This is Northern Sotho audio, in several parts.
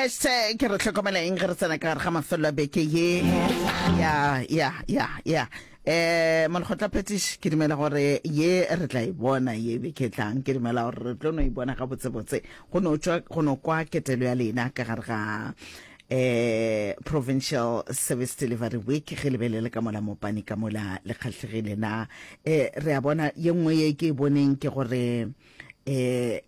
hashtag re tlhokomela eng ge re tsena ka gare ga mafelelo a beke ye ya ya ya ya um molekgotla phetiši ke dumela gore ye re tla e bona ye beke tlang ke dumela gore re tlo no e bona gabotsebotse go no tswa go no kwa ketelo ya lena ka gare ga eh provincial service delivery week ge lebelele ka mola mopane ka mola le kgatlhegile na eh re a bona ye nngwe ye ke e boneng ke gore eh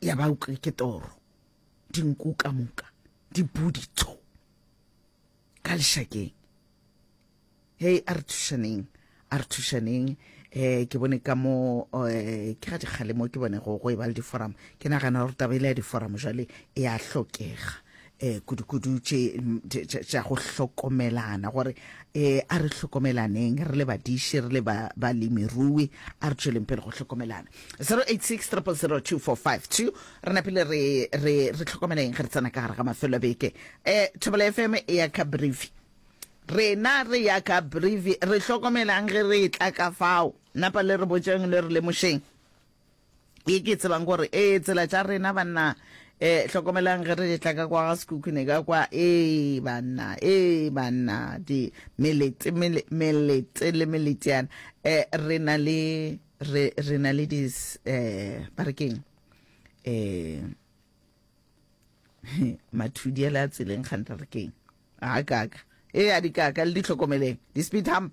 ya ba utlwe ke toro dinku ka moka di budi tso ka lešakeng hei a re thušaneng a re thušaneng um ke bone ka mo um ke ga dikgalemo ke bone go go e ba le diforamo ke nagana gore taba ile ya diforamo jale e a hlokega um kudukudu tše tša go hlokomelana gore um a re hlokomelaneng re le badiši re le balemirui a re tšweleng pele go hlokomelana 0863002452 re napele re re re tlhokomeleng ge re tsena ka gare ga mafelo a beke um thobela fm e ya ka brief rena re ya ka brief re hlokomelang ge re tla ka fao napa le re botšeng le re lemošeng ye ke tsebang gore ee tsela tša rena banna um hlokomelang ge re tla ka kwa ga sekhukhune ka kwa ee banna ee banna di melete melete le meleteana um re na le re na le dis um ba re keng um mathudi a le a tseleng gante re keng a kaka ee a dikaka le di tlhokomeleng di-speed hump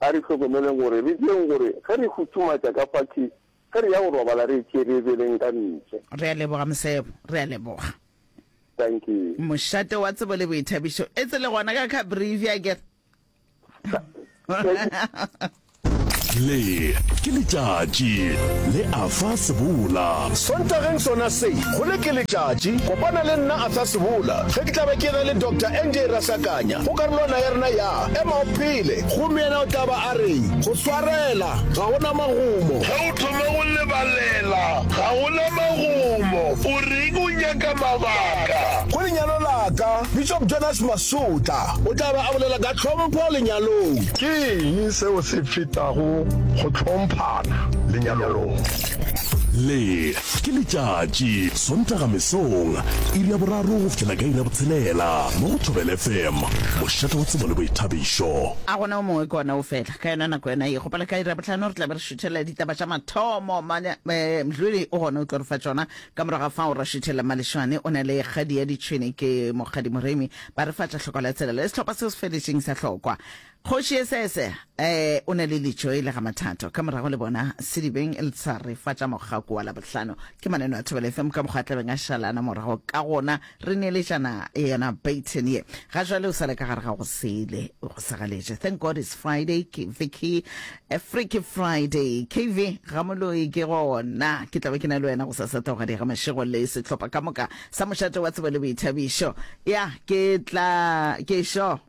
A re hlokomeleng gore re direng gore ge re futhumatša ka fase, ge re ya go robala re etše re beleng ka ntle. Re a leboga, Mosebo. Re a leboga. Thank you. Mošate wa tsebo le boithabišo. Etse le gona ka Cabrivia akere? Le ke letšatši le Arthur Sebola. Sontageng sona se, go le ke letšatši. Kopana le nna Arthur Sebola ge ke tla be ke ena le Doctor Andy Erasakanya go karolwana ya rena ya. Ema o phele! Gomme yena o tla ba a reng? Go swarela! Ga go na magumo. Ge o thoma go lebalela, ga go na magumo. O reng o nyaka mabaka? Go lenyalo la ka, Bishop Jonas Masutla o tla be a bolela ka tlhompho lenyalong. Ke eng seo se fetago go hlomphana lenyalong? Le Ke letšatši, Sontaga mesong, iri ya boraro go fihlela ka iri ya botshelela, mo go Thobela FM, mošate wa tsebo le boithabišo. A gona o mongwe ke ona o fela? Ka yona nako yona ye, gopole ka iri ya bohlano re tla be re šuthelela ditaba tša mathomo. Mane Mdluli o gona o tlo re fa tšona. Ka morago ga fao ra šuthelela Malešwane o na le kgadi ya ditšhwene, ke Mokgadi Moremi ba re fa tša hloko la tsela le sehlopha seo se feletšeng sa hlokwa. Kgoši Yesese ee o na le litšo e le ga Mathato. Ka morago le bona sedibeng le sa re fa tša mogako wa Labohlano. Ke maneno a Thobela FM ka mokgwa a tlabeng a šala ana morago ka gona re neeletšana yona baton ye. Ga jwale o sa le ka gare ga go sele go sa galetše. Thank God it's Friday ke Vicky a Freaky Friday. KV Ramoloi ke gona ke tla be ke na le wena go sa sa tla go ga dira mašego le sehlopha ka moka sa mošate wa tsebo le boithabišo. Ya ke tla ke šo.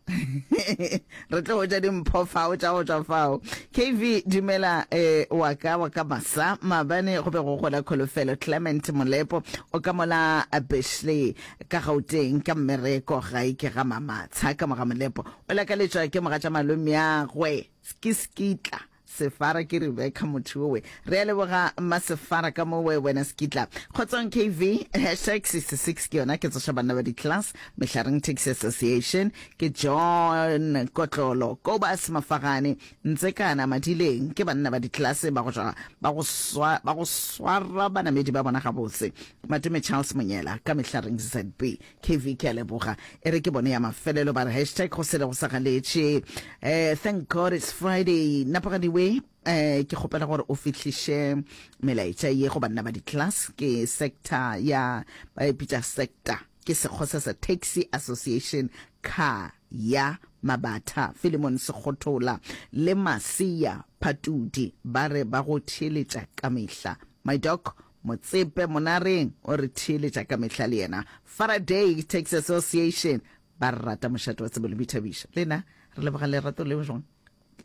re tlo ja dimpho fao tša go tswa fao kv dumela eh, wa ka wa ka masa maabane go be go gola kholofelo clement molepo o ka mola beshley ka gauteng ka mmereko gae ke ga mamatsha ka moga molepo o lakaletswa ke moga tša malomeagwe ke skitla Sefara ke Rebecca motho owe. Re a leboga mma Sefara ka mo we wena sekitla. Kgotsong KV, hashtag 66 ke yona ke tsoša banna ba di class, Mehlareng Taxi Association, ke John Kotlolo, Kobus Mafagane, Ntsekana Madileng, ke banna ba di class ba go ja ba go swa ba go swara banamedi ba bona gabotse. Matome Charles Monyela ka Mehlareng ZB. KV ke a leboga e re ke bone ya mafelelo ba re hashtag go sele go sa galetše eh thank god it's friday napagadiwe eh ke kgopela gore o fihliše melaetša ye go banna ba di-class ke sector ya ba e pitša sector ke sekgosa sa taxi association car ya mabatha filemon sekgothola le maseya phatudi ba re ba go theeletša ka mehla my doc Motsepe Monareng o re theeletša ka mehla le yena Faraday Taxi Association ba rata mošate wa tsebo le boithabišo. Le na re leboga lerato leo jwang?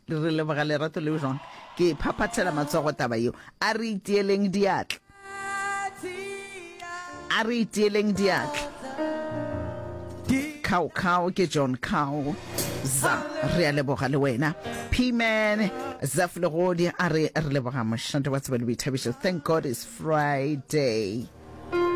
Re leboga lerato leo jwang? Ke e phaphathela matsogo taba yeo. A re itieleng diatla. A re itieleng diatla. Cow Cow ke John Cow. Za, re a leboga le wena. P-man, Zaf Legodi a re re leboga mošate wa tsebe le boithabišo. Thank God it's Friday.